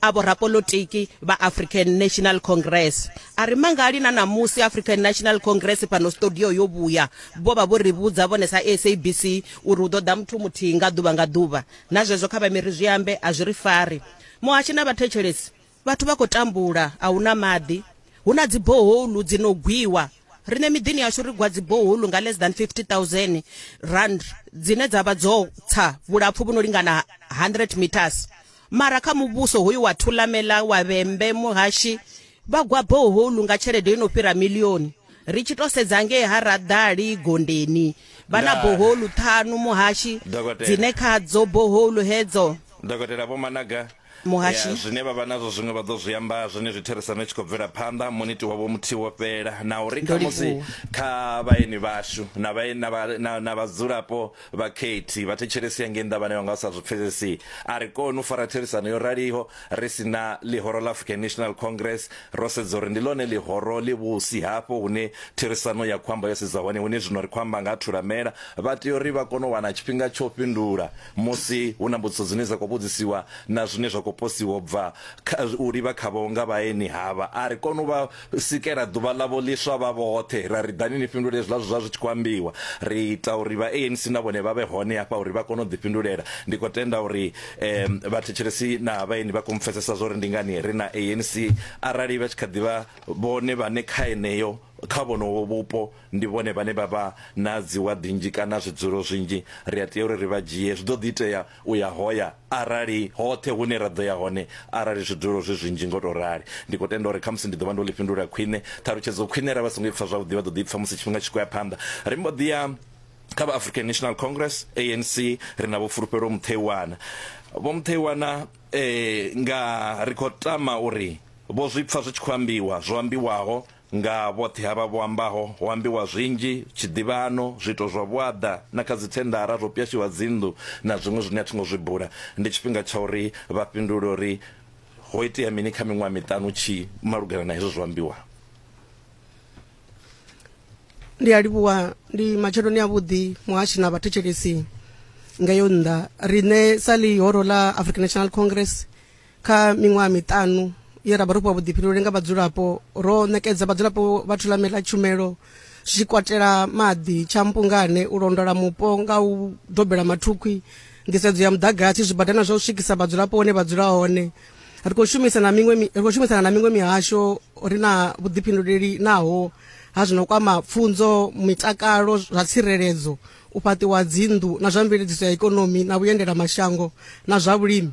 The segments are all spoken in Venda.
a vhorapolotiki vha african national congress a ri mangali na ṋamusi african national congress fhano studio yo vhuya vho vha vho ri vhudza vhone sa sabc uri hu ḓo ḓa muthu muthihi nga ḓuvha nga ḓuvha na zwezwo kha vhamiri zwi ambe a zwi ri fari muhashi na vhathetshelesi vhathu vha khou tambula a hu na maḓi hu na dziboholu dzi no gwiwa rine miḓini yashu ri gwa dziboholu nga less than 50000 rand dzine dza vha dzo tsa vhulapfu vhu no lingana 100 meters Mara kha muvhuso hoyu wa Thulamela, wa Vhembe, Muhashi vha gwa boholu nga tshelede yo no fhira milioni. Ri tshi to sedza ngei ha Raḓali Gondeni vha na boholu ṱhanu Muhashi dzine khadzo boholu hedzo Dokotela Vho Managa, Muhashi. Zwine vha vha nazwo zwiṅwe vha ḓo zwi amba zwenezwi therisano i tshi khou bvela phanḓa, muniti wavho muthihi wo fhela na uri khamusi kha vhaeni vhashu na vhaeni na vhadzulapo Vha Katie vha thetshelesi ya ngei Ndavhane vha nga sa zwi pfesesi. A ri koni u fara therisano yo raliho ri si na ḽihoro ḽa African National Congress. Ro sedza uri ndi ḽone ḽihoro ḽi vhusi hafho hune therisano ya khou amba yo sedza hone. Hone zwino ri khou amba nga ha Thulamela. Vha tea uri vha kone u wana tshifhinga tsha u fhindula musi hu na mbudziso dzine dza khou vhudzisiwa na zwine zwa khou posiwa u bva u livha khavho nga vhaeni havha. A ri koni u vha sikela ḓuvha ḽavho ḽiswa vha vhoṱhe ra ri ḓani ni fhindule zwiḽa zwa zwi tshi khou ambiwa ri ita uri vha ANC na vhone vha vhe hone hafha uri vha kone u ḓifhindulela ndi khou tenda uri um vhathetshelesi na vhaeni vha khou mpfesesa zwo ri ndi ngani ri na ANC arali vha tshi kha ḓivha vhone vhane kha eneyo kha vhonowo vhupo ndi vhone vhane vha vha na dziwaḓi nnzhi kana zwidzulo zwinzhi ri a tea uri ri vha dzhie zwi ḓo ḓi itea u ya hoya arali hoṱhe hune ra ḓo ya hone arali zwidulo zwi zwinzhi ngo tou rali. Ndi khou tenda uri khamusi ndi ḓo vha ndo ḽi fhindula khwine ṱhalutshedzo khwine arali vha songo i pfa zwavhuḓi vha ḓo ḓi i pfa musi tshifhinga tshi khou ya phanḓa. Ri mbo ḓi ya kha vha African National Congress, ANC, ri na Vho Fulufhelo Mutheiwana. Vho Mutheiwana nga ri khou tama uri vho zwi pfa zwi tshi khou ambiwa zwo ambiwaho Nga vhoṱhe havha vho ambaho, ho ambiwa zwinzhi, tshiḓivhano, zwiito zwa vhuaḓa, na kha dzithendara zwo pwyashiwa dzinnḓu na zwiṅwe zwine a thi ngo zwi bula. Ndi tshifhinga tsha uri vha fhindule uri ho itea mini kha miṅwaha miṱanu tshi malugana na hezwo zwo ambiwaho. Ndi a livhuwa, ndi matsheloni avhuḓi muhashi na vhathetshelesi. Ngeyo nnḓa, riṋe sa ḽihoro ḽa African National Congress, kha miṅwaha miṱanu ye ra vha ro fhiwa vhuḓifhinduleli nga vhadzulapo ro ṋekedza vhadzulapo vha thulameli ḽa tshumelo zwi katela maḓi tshampungane u londola mupo nga u dobela mathukhwi nḓisedzo ya muḓagasi zwibadana zwa u swikisa vhadzulapo hone vha dzula hone ri khou shumisana miṅwe ri khou shumisana na miṅwe mihasho ri na vhuḓifhinduleli naho ha zwino kwama pfunzo mitakalo zwa tsireledzo u fhaṱiwa dzinnḓu na zwa mveledziso ya ikonomi na vhuendela mashango na zwa vhulimi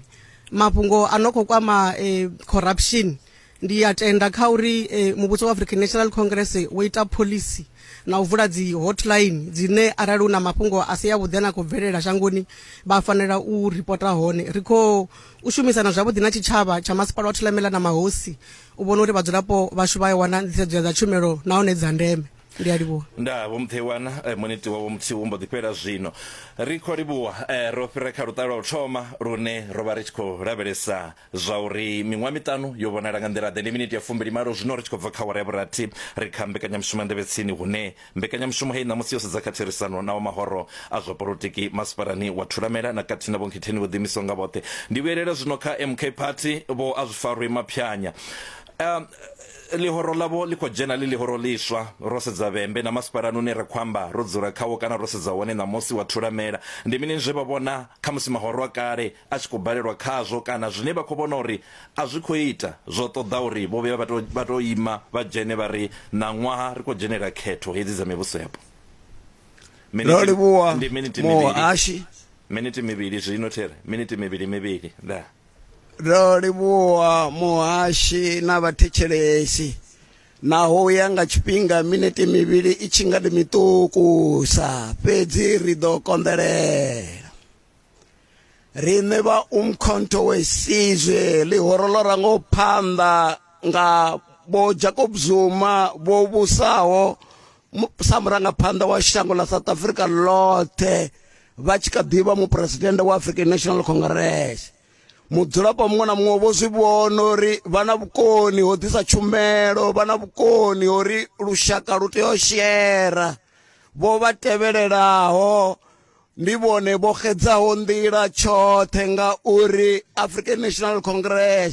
mafhungo a no khou kwama eh, corruption ndi a tenda kha uri eh, muvhuso wa african national congress wo ita pholisi na u vula dzi hotline dzine arali hu na mafhungo a si yavhuḓi a na khou bvelela shangoni vha fanela u ripota hone ri khou u shumisana zwavhuḓi na tshitshavha tsha masipala wa thulamela na mahosi u vhona uri vhadzulapo vhashu vha ya wana nḓisedzo ya dza tshumelo nahone dza ndeme ndi a livhuwa nda vho muthewana eh, muniti wavho muthihi wo mbo ḓi fhela zwino ri khou livhuwa eh, ro fhira kha luṱa lwa u thoma lune ro vha ri tshi khou lavhelesa zwa uri miṅwaha miṱanu yo vhonala nga nḓila ḓe ndi miniti ya fumbili malo zwino ri tshi khou bva kha wara ya vhurathi ri kha mbekanyamushumo ya ndevhetsini hune mbekanyamushumo heyi ṋamusi yo sedza kha therisano na wa mahoro a zwa polotiki masipalani wa thulamela na khathihi na vhonkhetheni vho ḓiimisaho nga vhoṱhe ndi vhuyelela zwino kha mk party vho a zwi farwi maphyanya um, Ḽihoro ḽavho ḽi khou dzhena ḽi ḽihoro ḽiswa. Ro sedza vhembe na masipalani une ra khou amba, ro dzula khawo kana ro sedza hone ṋamusi wa thulamela. Ndi mini zwe vha vhona, khamusi mahoro a kale a tshi khou balelwa khazwo kana zwine vha khou vhona uri a zwi khou ita? Zwo ṱoḓa uri vho vhuya vha tou vha tou ima vha dzhene vha ri, Ṋaṅwaha ri khou dzhenela khetho hedzi dza mivhusoyapo. Ro livhuwa Muhashi. Miniti mivhili zwino, Terry. Miniti mivhili, mivhili. Ndaa. ro livhuwa muhashi na vhathetshelesi naho u ya nga tshifhinga minete mivhili i tshi nga ndi miṱukusa fhedzi ri ḓo konḓelela riṋe vha umkhonto wesizwe ḽihoro ḽo rango phanḓa nga vho jacob zuma vho vhusaho sa murangaphanḓa wa shango ḽa south africa ḽoṱhe vha tshi kha ḓivha muphuresidennde wa african national congress mudzulapo muṅwe na muṅwe vho zwi vhona uri vha na vhukoni ho ḓisa tshumelo vha na vhukoni ho ri lushaka lu tea u shera vho vha tevhelelaho ndi vhone vho xedzaho nḓila tshoṱhe nga uri african national congress